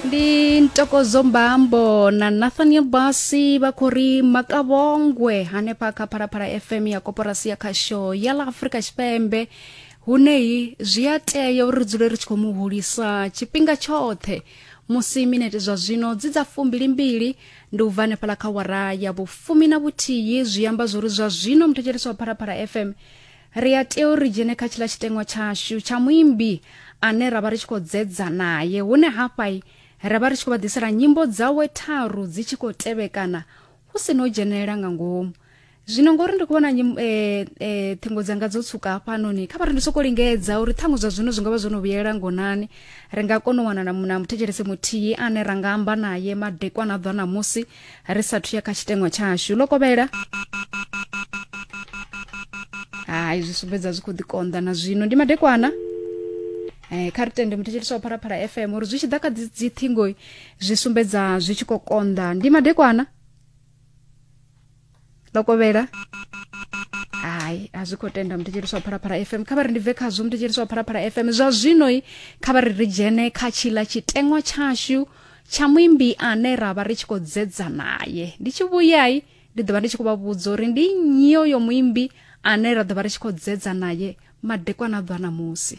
ndi ntokozo mbambo na nathaniel basi vha khou ri makavhongwe hanefha kha phalaphala fm ya koporasi ya khasho ya ḽa afrika tshipembe huneyi zwi a tea uri ri dzule ri tshi khou mu hulisa tshifhinga tshoṱhe musi minete zwa zwino dzi dza fumbilimbili ndi u bva hanefhala kha wara ya vhufumi na vhuthihi zwi amba zwori zwa zwino muthetshelesi wa phalaphala fm ri a tea uri dzhene kha tshiḽa tshiteṅwa tshashu tsha muimbi ane ra vha ri tshi khou dzedza naye hune hafha ra vha ri tshi khou vha ḓisela nyimbo dzawe tharu dzi tshi khou tevhekana hu si no dzhenelela nga ngomu zwino ngori ndi khou vhona e, e, ṱhingo dzanga dzo tsuka hafhanoni kha vha ri ndi soko lingedza uri ṱhaṅwe zwa zwino zwi nga vha zwo no vhuyelela ngonani ri nga kona u wana na muthetshelesi muthihi ane ra nga amba naye madekwana a ḓwa ṋamusi ri sathu ya kha tshiteṅwa tshashu ḽo kovhela hai zwi sumbedza zwi khou ḓikonḓa na zwino ndi madekwana Eh, kha ri tende muthetshelisi wa phalaphala fm uri zwi tshi ḓa kha dzi- dziṱhingo zwi sumbedza zwi tshi khou konḓa ndi madekwana ḽo kovhela hai a zwi khou tenda mutetshelisi wa phalaphala fm kha vha ri ndi bve khazwo mutetshelisi wa phalaphala fm zwa zwinoi kha vha ri ri dzhene kha tshila tshiteṅwa tshashu tsha muimbi ane ra vha ri tshi khou dzedza naye ndi tshi vhuyai ndi ḓo vha ndi tshi khou vha vhudza uri ndi nnyi yo muimbi ane ra ḓo vha ri tshi khou dzedza naye madekwana a ḓwa na musi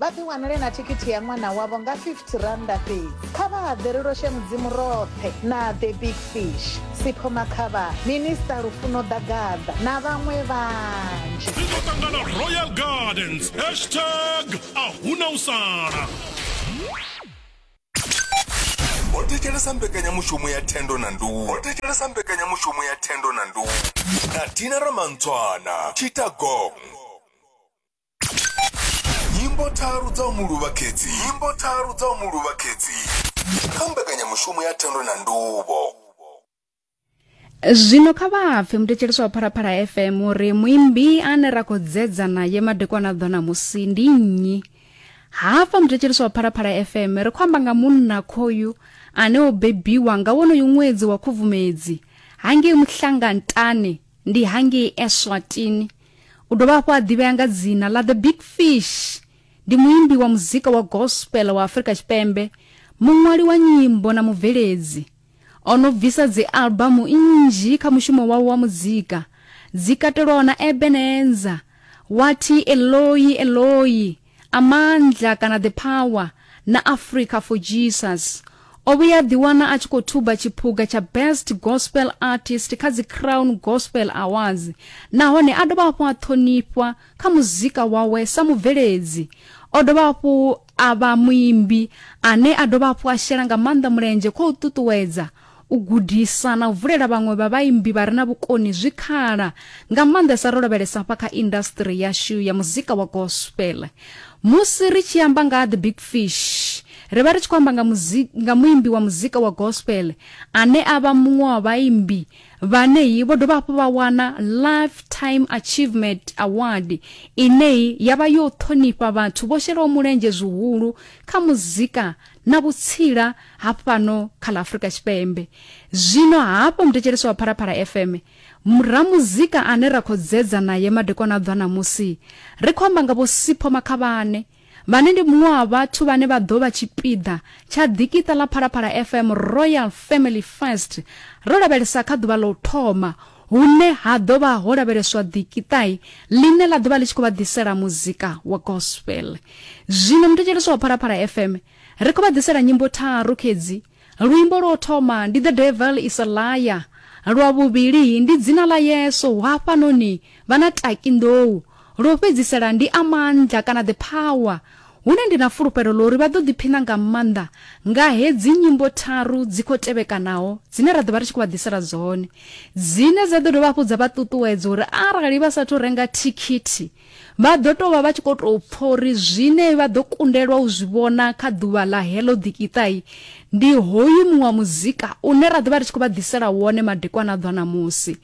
Vha ḓiwanele na thikhithi ya ṅwana wavho nga R50 fhedzi. Kha vha haḓele lwo She Mudzimu roṱhe na The Big Fish, Sipho Makhavhani, Minisṱa Lufuno Ḓagaḓa na vhaṅwe vhanzhi. Ri ḓo ṱangana Royal Gardens, hashtag a hu na u sala. Ho thetshelesa mbekanyamushumo ya thendo na nduhu. Ho thetshelesa mbekanyamushumo ya thendo na nduhu. Na Tina Ramantswana, Tshita Gong. nyimbo tharu dza u mu luvha khedzi nyimbo tharu dza u mu luvha khedzi kha mbekanyamushumo ya thendo na nduvho zwino kha vha pfe mutetshelisi wa pharaphala fm uri muimbi ane ra khou dzedza naye madekwana ḓo ṋamusi ndi nnyi hafha mutetshelisi wa pharaphala fm ri khou amba nga munna khoyu ane o bebiwa nga wonoyu ṅwedzi wa khubvumedzi hangei muhlangantane ndi hangei eswatini u dovha hafhu a ḓivhea nga dzina ḽa the big fish ndi muimbi wa muzika wa gospel wa afurika tshipembe muṅwali wa nyimbo na mubveledzi o no bvisa dzialbamu nnzhi kha mushumo wawe wa muzika dzi katelwaho na ebenenza wathi eloi eloi Amandla kana The Power na Africa for Jesus. O vhuya ḓiwana a tshi khou thuba tshiphuga tsha Best Gospel Artist kha dzi Crown Gospel Awards nahone a dovha hafhu a ṱhonifhwa kha muzika wawe sa mubveledzi. O dovha hafhu a vha muimbi ane a dovha hafhu a shela nga maanḓa mulenzhe khou ṱuṱuwedza u gudisa na u vulela vhaṅwe vha vhaimbi vha re na vhukoni zwikhala, nga maanḓesa ro lavhelesa hafha kha indasitiri yashu ya muzika wa gospel. Musi ri tshi amba nga ha The Big Fish, ri vha ri tshi khou amba nga, muzika, nga muimbi wa muzika wa gospel ane a vha muṅwe wa vhaimbi vhaneyi vho dovha hafhu vha wana Lifetime Achievement Award ineyi ya vha yo ṱhonifha vhathu vho shelaho mulenzhe zwihulu kha muzika na vhutsila ha fhano kha ḽa Afrika Tshipembe. Zwino hafho muthetshelesi wa Phalaphala FM, ramuzika ane ra khou dzedza naye madekwana a ḓwa ṋamusi, ri khou amba nga Vho Sipho Makhavhane, vhane ndi muṅwe wa vhathu vhane vha ḓo vha tshipiḓa tsha ḓikiṱa ḽa Phalaphala FM Royal Family First, ro lavhelesa kha ḓuvha ḽa u thoma hune ha ḓo vha ho lavheleswa ḓikiṱai ḽine ḽa ḓo vha ḽi tshi khou vha ḓisela muzika wa gospel zwino muthetshelesi wa phalaphala fm ri khou vha ḓisela nyimbo tharu khedzi luimbo lwo thoma ndi the devil is a liar lwa vhuvhili ndi dzina ḽa yesu hafhanoni vha na taki nḓou Lwo fhedzisela ndi a maanḓa kana The Power, hune ndi na fulufhelo ḽa uri vha ḓo ḓiphina nga maanḓa nga hedzi nyimbo tharu dzi khou tevhekanaho dzine ra ḓo vha ri tshi khou vha ḓisela dzone, dzine dza ḓo dovha hafhu dza vha ṱuṱuwedza uri arali vha sa athu renga thikhithi, vha ḓo tou vha vha tshi khou tou pfa uri zwine vha ḓo kundelwa u zwi vhona kha ḓuvha ḽa heḽo ḓikiṱai ndi hoyu muṅwe wa muzika une ra ḓo vha ri tshi khou vha ḓisela wone madekwana a ḓwa ṋamusi.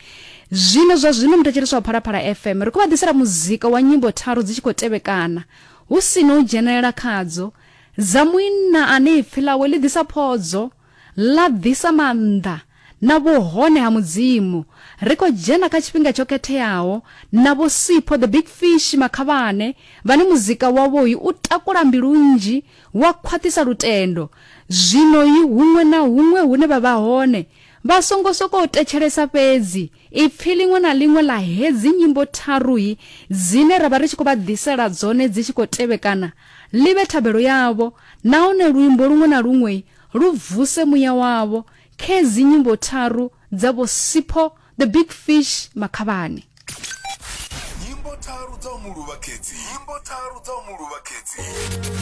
Zwino zwa zwino muthetshelesi wa Phalaphala FM ri khou vha ḓisela muzika wa nyimbo tharu dzi tshi khou tevhekana, hu si na u dzhenelela khadzo, dza muinna ane ipfi ḽawe ḽi ḓisa phodzo, ḽa ḓisa maanḓa na vhuhone ha Mudzimu. Ri khou dzhena kha tshifhinga tsho khetheaho na Vho Sipho The Big Fish Makhavhane vhane muzika wavhoi u takula mbilu nnzhi wa khwaṱhisa lutendo. Zwinoi huṅwe na huṅwe hune vha vha hone Vha songo sokou thetshelesa fhedzi ipfi ḽiṅwe na ḽiṅwe ḽa hedzi nyimbo tharuhi dzine ra vha ri tshi khou vha ḓisela dzone dzi tshi khou tevhekana ḽi vhe thabelo yavho nahone luimbo luṅwe na luṅwe lu vuse muya wavho khedzi nyimbo tharu dza Vho Sipho the Big Fish Makhavhani. Nyimbo tharu dza u mu luvha khedzi nyimbo tharu dza u mu luvha khedzi.